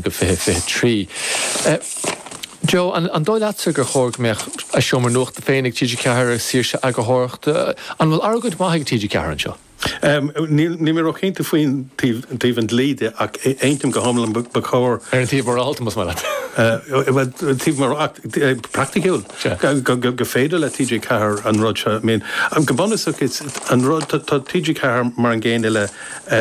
go 2023. Joe, an dóigh leatsa gur chóir go mbeadh a seomra nuachta féin ag TG4 agus saoirse eagarthóireachta? An bhfuil argóint mhaith ag TG4 anseo? Níl mé ró-chinnte faoin taobh an dlí de ach aontaím go hiomlán ba chóir. Ar an taobh mhorálta, más maith leat? Bhuel, taobh mhorálta, praiticiúil, gur féidir le TG4 an rud seo. I mean, go bunúsach, an rud, tá TG4 mar an gcéanna le.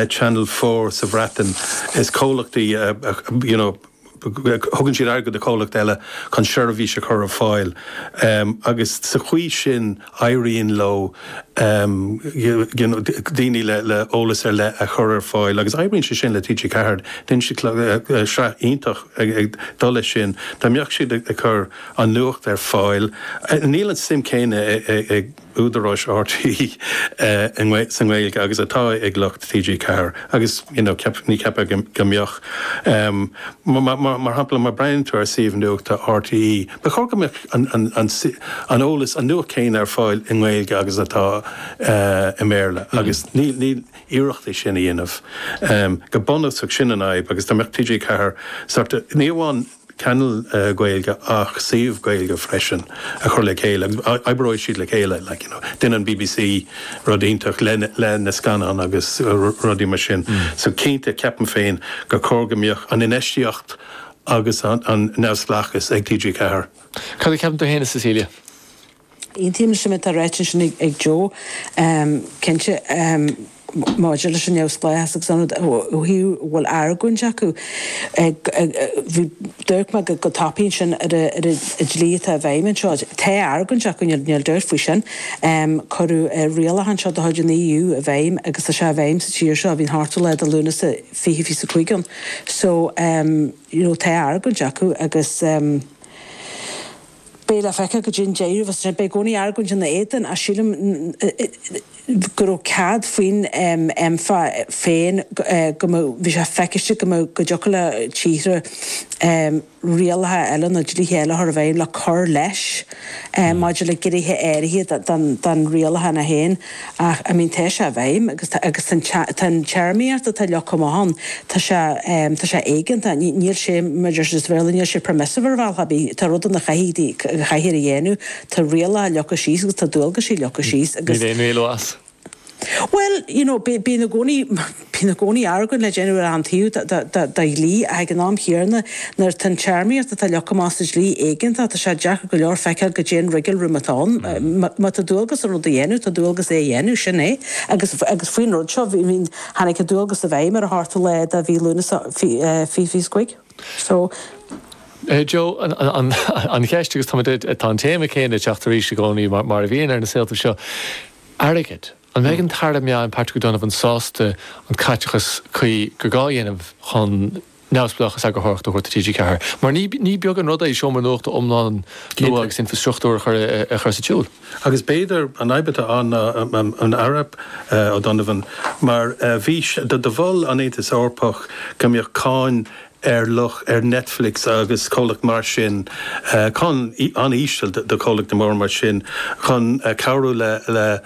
Channel Four sa Bhreatain. Is comhlachtaí, you know, thugann siad airgead do chomhlachtaí eile chun seirbhís a chur ar fáil agus sa chaoi sin éiríonn leo daoine le eolas ar leith a chur ar fáil agus éiríonn sé sin le TG4. Déanann siad sraith iontach ag dul leis sin. Dá mbeadh siad ag cur an nuacht ar fáil, níl an suim céanna ag. údaráis RTÉ sa nGaeilge agus atá ag lucht TG4 agus you know ceap, ní cheapfá go mbeadh. Mar shampla, má breathnaíonn tú ar suíomh nuachta RTÉ, ba chóir go mbeadh an eolas, an nuacht céanna ar fáil i nGaeilge agus atá i mBéarla agus níl, níl iarracht é sin a dhéanamh. Go bunúsach sin an fhadhb agus dá mbeadh TG4 sort of, ní amháin, channel Gaeilge ach suíomh Gaeilge freisin a chur le chéile agus oibreoidh siad le chéile like you know déanann an bbc rud iontach le le na scannáin agus rudaí mar sin so cinnte ceapaim féin gur chóir go mbeadh an infheistíocht agus an an neamhspleáchas ag TG4. Cad a cheapann tú fhéin a Cecilia? Aontaím leis an méid atá ráite ansin ag Joe, cinnte, maidir leis an neamhspleáchas agus ó thaobh an bhfuil argóint acu. D'amharc mé go tapaidh ansin ar an dlí atá i bhfeidhm anseo. Tá argóint acu, níl dabht faoi sin. Cuireadh an rialachán seo de chuid an EU i bhfeidhm agus tá sé i bhfeidhm sa tír seo, ó bhí an t-ochtú lá de Lúnasa 2025 ann. So, you know, tá argóint acu agus. Beidh le feiceáil go dtí an deireadh, is é sin, beidh i gcónaí argóint ina éadan ach sílim go raibh cead faoin EMFA féin go mbeadh, bhí sé feiciste go mbeadh, go dtiocfadh le tíortha rialacha eile nó dlíthe eile a chur i bhfeidhm le cur leis maidir le gnéithe áirithe den rialachán é féin. Ach, I mean, tá sé i bhfeidhm agus tá, agus tá an téarmaíocht atá leagtha amach ann, tá sé, tá sé éigeantach, níl sé, mar a deir an Béarla, níl sé permissive ar bhealach ar bith, tá rudaí ann a chaithfidh tú a dhéanamh, tá rialacha leagtha síos agus tá dualgaisí leagtha síos agus. Ní bheidh aon éalú as. Bhuel, you know, bíonn i gcónaí. Bíonn i gcónaí argóint le déanamh ar aon taobh de dhlí ach ag an am chéanna, nuair atá an téarmaíocht atá leagtha amach sa dlí éigeantach, tá sé deacair go leor feiceáil go cén wriggle room atá ann. Má tá dualgas an rud a dhéanamh, tá dualgas é a dhéanamh, sin é. Agus faoin rud seo, tháinig an dualgas i bhfeidhm ar an ochtú lá de mhí Lúnasa fiche is cúig. Joe, An cheist, agus tá an téama céanna ag teacht arís i gcónaí mar a bhíonn ar na saoltaibh seo, airgead. An mbeidh an tAire Meáin Patrick O'Donovan sásta an caiteachas cuí gur gá a dhéanamh chun neamhspleáchas eagarthóireachta a thabhairt do TG4? Mar ní beag an rud é seomra nuachta iomlán nua agus infreastruchtúr a chur sa tsiúl. Agus b'fhéidir an fhadhb atá ann ná an Aire O'Donovan mar bhí do mhol an tAontas Eorpach go mbeadh cáin ar lucht ar Netflix agus comhlachtaí mar sin, cáin an-íseal do chomhlachtaí móra mar sin, chun cabhrú le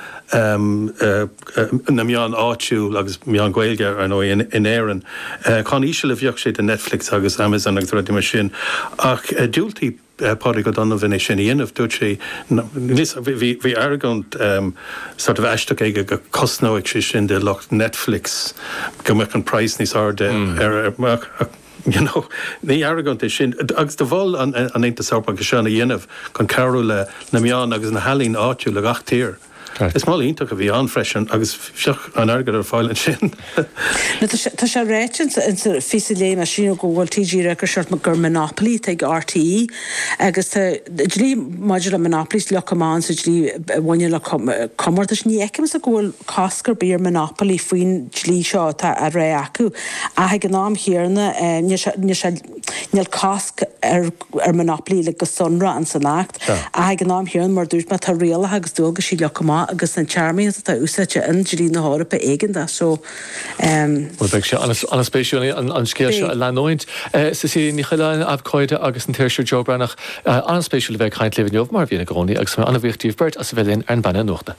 na meáin áitiúil agus meáin Ghaeilge, ar ndóigh, in Éirinn. Cáin íseal a bheadh sé do Netflix agus Amazon agus rudaí mar sin ach dhiúltaigh Patrick O'Donovan é sin a dhéanamh, dúirt sé bhí argóint sort of aisteach aige go gcosnódh sé sin do lucht Netflix, go mbeadh an price níos airde ar you know ní argóint é sin agus do mhol an tAontas Eorpach é seo a dhéanamh chun cabhrú le na meáin agus na healaíona áitiúil i ngach tír. Is moladh iontach a bhí ann freisin agus bheadh an t-airgead ar fáil ansin. Tá sé ráite sa phíosa a léigh mé ansin go bhfuil TG4 ag rá de shórt gur monopoly atá ag RTÉ agus tá dlí maidir le monopolies leagtha amach sa dlí a bhaineann le comórtais. Ní fheicimse go bhfuil cosc ar bith ar monopoly faoin dlí seo atá á rá acu ach ag an am chéanna Níl cosc ar monopoly le go sonrach insan Acht, ach ag an am chéanna, mar dúirt mé, tá rialacha agus dualgaisí leagtha amach agus an téarmaíocht atá úsáidte in dlí na hEorpa éigeantach. So. Bhuel, beidh sé an-spéisiúil an scéal seo a leanúint. Cecilia Ní Choileáin, abhcóide, agus an t-iriseoir Joe Breathnach, an-spéisiúil a bheith ag caint libh inniu, mar a bhíonn i gcónaí, agus tá mé an-bhuíoch díbh beirt as a bheith linn ar an bPainéal Nuachta.